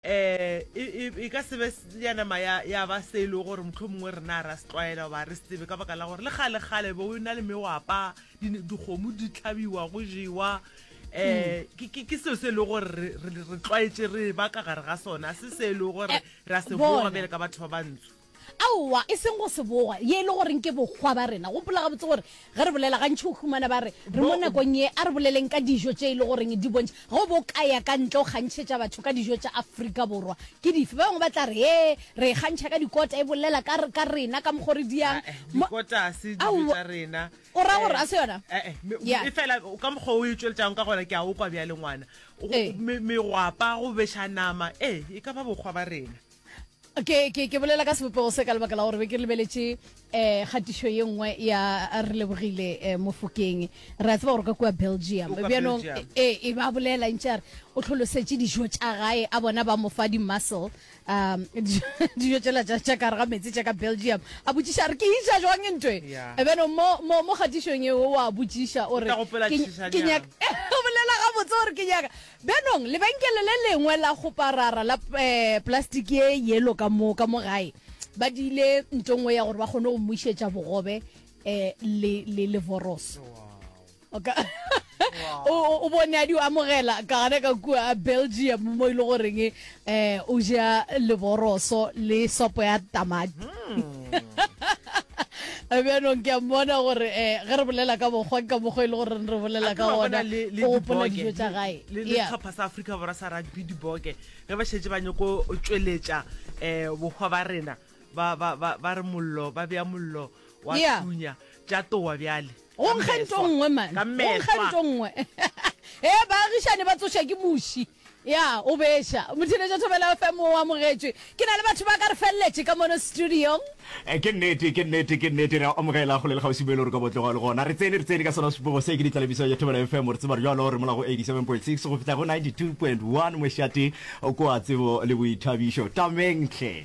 Ee, e ka se be ya nama ya ba se e le gore mohlomongwe rena a ra se tlwaela goba re se tsebe ka baka la gore le kgalekgale bo na le mewapa dikgomo di tlhabiwa go jewa um ke seo se e le gore re tlwaetse re ba ka gare ga sona se se e le gore re a se boa bjale ka batho ba bantsho Aowa, e seng go se boga, ye e le goreng ke bokgwa ba rena. Gopola gabotse gore ge re bolela, gantši o humana ba re, re mo nakong ye. A re boleleng ka dijo tše e le goreng di bontšha. Ge o bo ka ya ka ntle o kgantšhetša batho ka dijo tša Afrika Borwa, ke dife? Ba bangwe ba tla re, Hee, re e kgantšha ka dikota, e bolela ka, ka rena, ka mokgwa o re diang. Ae, dikota ga se dijo Aowa. tša rena. O ra gore ga se yona? Eh, eh, me- Ya. efela ka mokgwa o e tšweletšago ka gona, ke a o kwa bjale ngwana. Go- Ee. me- Megwapa, go beša nama, ee, e ka ba bokgwa ba rena. ke ke ke bolela ka sebopego se ka lebaka la gore be ke lebeletše um kgatišo ye nngwe ya re lebogile um mofokeng re a tseba gore ka kua belgium bjanong e e ba bolela ntše a re o tlholosetše dijo tša gae a bona ba mo fa di-muscle um dijo tsela tša kare ga metsi tša ka belgium a botšiša a re ke iša jwang e ntwe bjanong mo kgatišong eo wa botšiša o re ke nyaka bolela gabotse gore ke nyaka Bjanong, lebenkele le lengwe la go parara la plastiki e yelo ka mo, ka mo gae, ba diile nto nngwe ya gore ba kgone go mmušetša bogobe um le, le, le voros. Oka, o, o bone a di amogela, ka gana ka kua Belgium mo e le goreng Eh, o ja leboroso le sopo ya tamati bjanong ke a mmona gore um ge re bolela ka mokgwa ka mokgwa e le gore re bolela ka ona o gopola dijo tsa gae letlhopha sa aforika borwa sa rugby diboke ge ba šetse ba nyoko tsweletša um bokgwa ba rena ba re mollo ba bea mollo wa thunya tša towa bjale o nkgento nngwe mane o nkgento nngwe e baagišane ba tsoša ke muši Ya, o beša. Mothineja Thobela FM o amogetšwe. Ke na le batho ba ka re feleletše ka mono studiong. E, ke nnete, ke nnete, ke nnete. Re a amogela kgole le kgauswi mo e le gore ka bo tloga le gona. Re tsene, re tsene ka sona sepogo se. Ke ditlalebiso ya Thobela FM. Re tseba bjalo re mola go 87.6 go fihla go 92.1 mošate kwa Tsebo le Boithabišo. Tameng hle!